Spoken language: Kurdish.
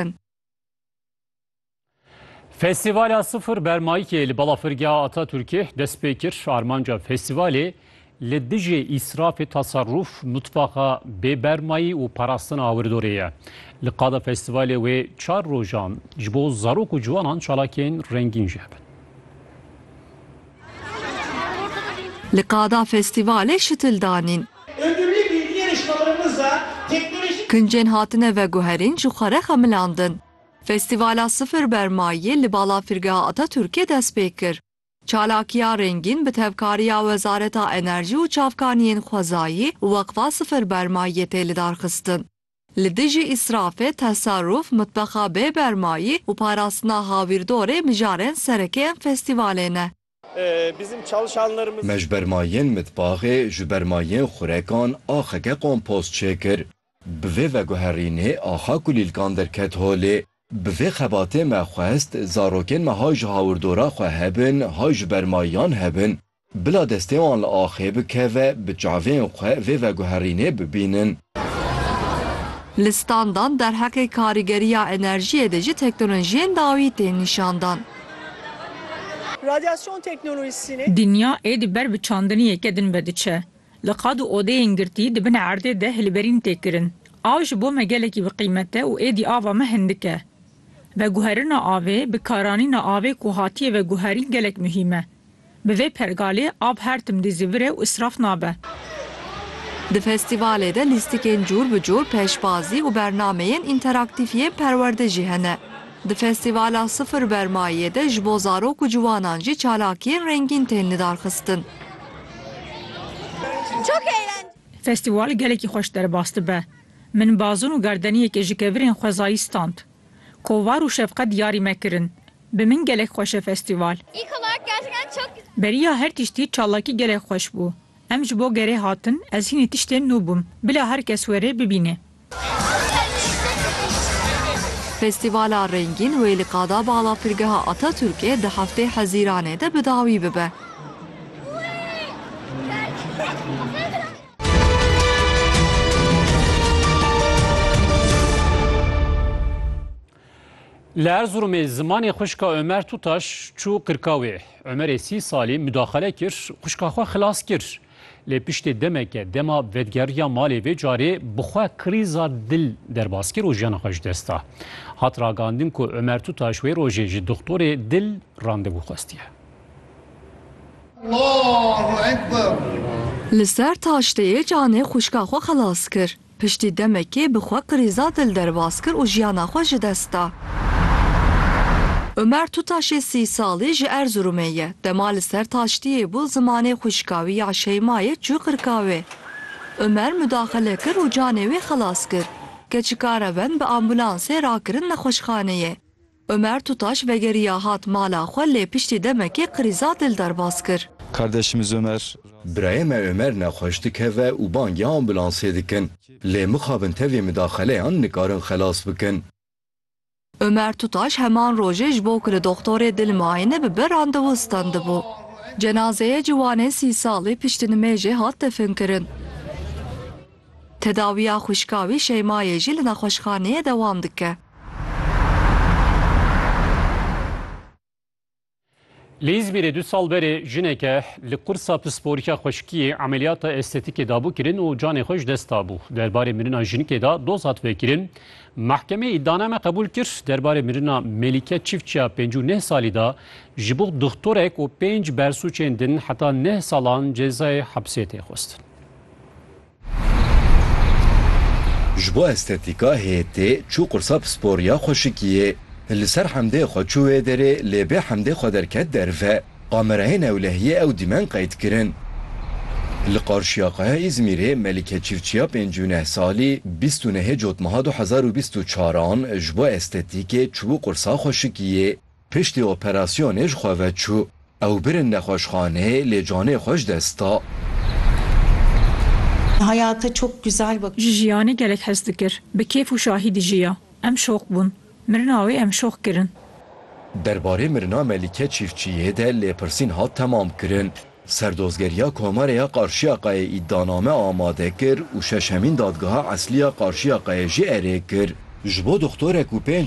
dikin. Festîvala Sifir Bermayîkê li Balafirgeha Ataturkê dest pê kir. Armanca festîvalê li dijî îsrafê teserrûf, mutfaxa bê bermayî û parastina awirdorê ye. Li qada festîvalê wê çar rojan ji bo zarok û ciwanan çalakên rengîn jî hebin. Li qada festîvalê şitil danîn. Kincên hatine veguherîn ji xwe re xemilandin. Festîvala Sifir Bermayî li Balafirgeha Atatürkê dest pê kir. Çalakiya rengîn bi tevkariya Wezareta Enerjî û Çavkaniyên Xwezayî û Weqfa Sifir Bermayiyê tê lidarxistin. Li dijî îsrafê, tesarûf, mitbexa bê bermayî û parastina hawîrdorê mijarên serekê em festîvalê ne. Me ji bermayên mitbaxê, ji bermayên xurekan axeke kompost çêkir. Bi vê veguherînê axa kulîlkan derket holê. Bi vê xebatê me xwest zarokên me hay ji hawirdora xwe hebin hay ji bermayiyan hebin. Bila destê wan li axê bikeve, bi çavên xwe vê veguherînê bibînin. Li standan derheqê karîgeriya enerjiyê de jî teknolojiyên dawî tên nîşandan. Radyasyon teknolojisînê. Dinya êdî ber bi çandiniyeke din vediçe. Li qad û odeyên girtî di bin erdê de hilberîn tê kirin. Av ji bo me gelekî bi qîmet e û êdî ava me hindik e. Veguherina avê, bikaranîna avê ku hatiye veguherîn gelek muhîm e. Bi vê pergalê av her tim dî zî vir e û îsraf nabe. Di festîvalê de lîstikên cûr bi cûr, pêşbazî û bernameyên înteraktîf yên perwerde jî hene. Di festîvala Sifir Bermayiyê de ji bo zarok û ciwanan jî çalakiyên rengîn tên lidarxistin. Festîval gelekî xweş derbas dibe. Min bazûn û gardeniyekê ji kevirên xwezayî stand. Kovar û şefqet diyarî me kirin. Bi min gelek xweş e festîval. Beriya her tiştî çalakî gelek xweş bû. Em ji bo gerê hatin, ez hînî tiştên nû bûm. Bila her kes were bibîne. Festîvala rengîn wê li Qada Balafirgeha Atatürkê di heftê Hezîranê de bi dawî bibe. Li Erzurumê zimanê xwişka Ömer Tutaş çû qirkawê. Ömerê sî salî mudaxele kir, xwişka xwe xilas kir. Lê piştê demeke dema vedgeriya malê vê carê bi xwe krîza dil derbas kir û jiyana xwe ji dest da. Hat ragandin ku Ömer Tutaş wê rojê ji dixtorê dil randevû xwestiye. Li ser taşteyê canê xwişka xwe xelas kir. Piştî demekê bi xwe krîza dil derbas kir û jiyana xwe ji dest da. Umer Tutaşê sî salî ji Erzurumê ye. Dema li ser taştiyê bû zimanê xwişka wî ya Şeymayê çû qirka wê. Umer mudaxele kir û canê wê xelas kir. Keçika reven bi ambulansê rakirin nexweşxaneyê. Ömer Tutaş vegeriya hat mala xwe lê piştî demekê qirîza dil derbas kir. Kardeşimiz Ömer. Birayê me Ömer nexweş dikeve û bangê ambulansê dikin. Lê mixabin tevî midaxeleyan nikarin xelas bikin. Ömer Tutaş heman rojê ji bo ku li doxtorê dil miayine bibe randewu standibû. Cenazeyê ciwanê sî salî piştî nimêjê hat definkirin. Tedawiya xwişka wî Şeymayê jî li nexweşxaneyê dewam dike. Li Îzmîrê du sal berê jineke li qursa pisporika xweşikiyê emeliyata estetîkê dabû kirin û canê xwe ji dest dabû. Derbarê mirina jinikê de doz hat vekirin. Mehkemeyê îddianame qebûl kir. Derbarê mirina Melîke Çiftçiya pêncî û neh salî de ji bo dixtorek û pênc bersûçên din heta neh salan cezayê hepsê tê xwestin. Ji bo estetîka hêtê çû qursa pispor ya xweşikiyê. Li ser hemdê xwe çû wê derê lê bê hemdê xwe derket derve. Kamerayê newlehiyê ew dîmen qeyd kirin. Li qarşiya Qaya Îzmîrê Melîke Çîfçiya pêncî û neh salî bîst û nehê cotmeha du hezar û bîst û çar an ji bo estetîkê çû qursa xweşikiyê. Piştî operasyonê ji xwe ve çû. Ew birin nexweşxaneyê lê canê xwe ji dest da. Ji jiyanê gelek hez dikir. Bi kêf û şahî dijiya. Em şox bûn. Mirina wê em şox kirin. Derbarê mirina Melîke Çîfçiyê de lêpirsîn hat temamkirin. Serdozgeriya Komarê ya Qarşiyaqayê îdianame amade kir û şeşemîn dadgeha eslî ya Qarşiyaqayê jî erê kir. Ji bo doxtorek û pênc